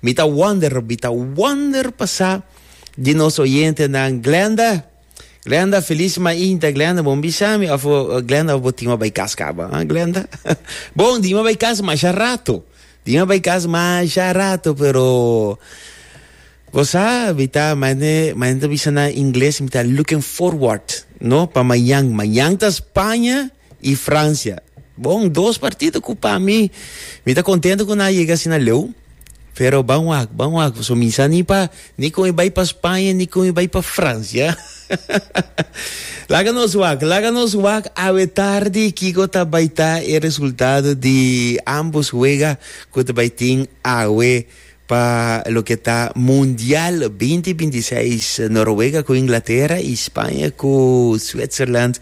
Mi ta wonder, mi ta wonder pasá di nos oyentenan. Glenda, Glenda, feliz mainta Glenda, bon bisa mi of Glenda of bo tima bay kas kaba, ha Glenda? bon dima bay kas masha rato, dima bay kas masha rato pero bo sa mi ta mañe mañe ta bisa nan ingles mi ta looking forward no pa mañan, mañan ta Spaña. y Francia. Bon, dos partido cu pa mi, mi ta contento cu nan yega asina leu, pero ban wak, ban wak, so mi sa ni pa, ni con mi bay pa Spaña, ni con mi bay pa Francia. Laga nos wak, laga nos wak awe tardi kico ta bay ta e resultado di ambos wega cu ta bay tin awe. Pa loke ta Mundial binti binti seis Noruega ku Inglatera i Spaña ku Switzerland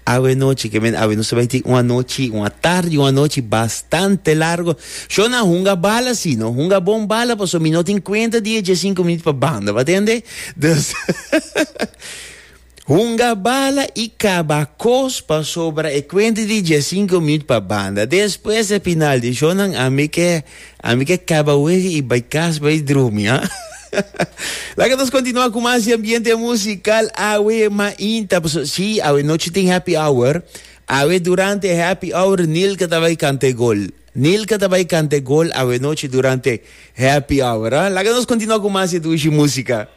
awe anochi ke men awe nos ta bai tin un anochi un atardi un anochi bastante largo shon nan hunga bala si no hunga bon bala paso mi no tin kuenta di e dje sinku minut pa banda pa tende dus Hunga bala i kaba kos pasobra e kuenta di dje sinku minut pa banda. Despues e final di shownan ami ke ami ke kaba wega i bai kas bai drumi, ha. Laga nos kontinua ku mas di ambiente musikal awe mainta paso si awe nochi tin happy hour. Awe durante e happy hour Nilka ta bai kanta e gol. Nilka ta bai kanta e gol awe nochi durante happy hour, ha. Laga nos kontinua ku mas di dushi musika.